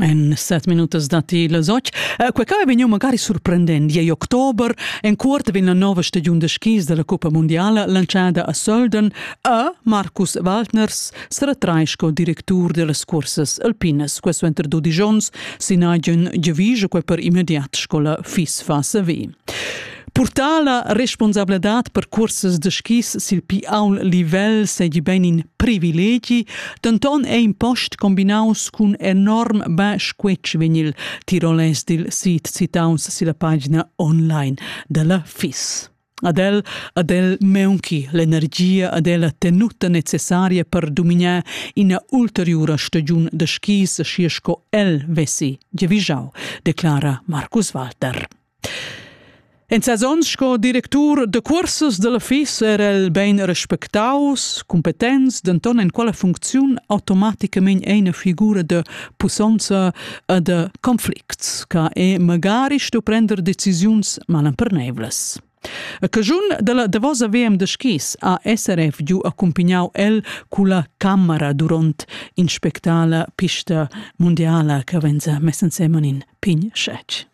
En set minutas datti las otg. Eh, quei ca è vegniu magari surprendent. Igl october, en cuort vegn la nova stagiun de skis della Coppa Mondiala lanciada a Sölden e Markus Waldners seretrai sco directur dellas cursas alpinas. Questo entro dodici onns sin agen gevigie, quei per immediat sco la FIS fa saver. Purtar la responsabladad per cursas da skis sil pi aul livel seigi bein in privilegi, denton ei in post combinaus cun enorm bun squetsch vegnil tirolais dil sit citaus silla pagina online dalla FIS. Ad el, ad el meunchi l'energia, ad el la tenuta necessaria per dominar ina ulteriura stagiun da skis schi sco el vessi giavischau, declara Markus Walter. En ses onns sco directur da cursas da l'office era el bain respectaus, cumpetents, denton en quella funcziun automaticamain eine figura da pussonza e da conflicts, che è magari sto prender decisiuns malemperneivlas. A caschun della davosa VM da skis ha SRF giu accumpagnau el culla camera duront inspectar la pista mundiala che venza mess ensemen in pign schetg.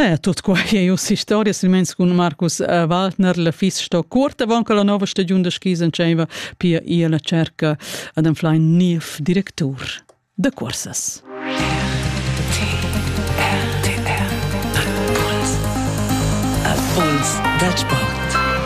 Eh, tut qua ei us historia silmeins cun Marcus eh, Waldner la fis sto cuort avant che la nova stagiun da skis entscheiva pia ia la cerca ad enflein niev directur da cursas. A Puls da Sport.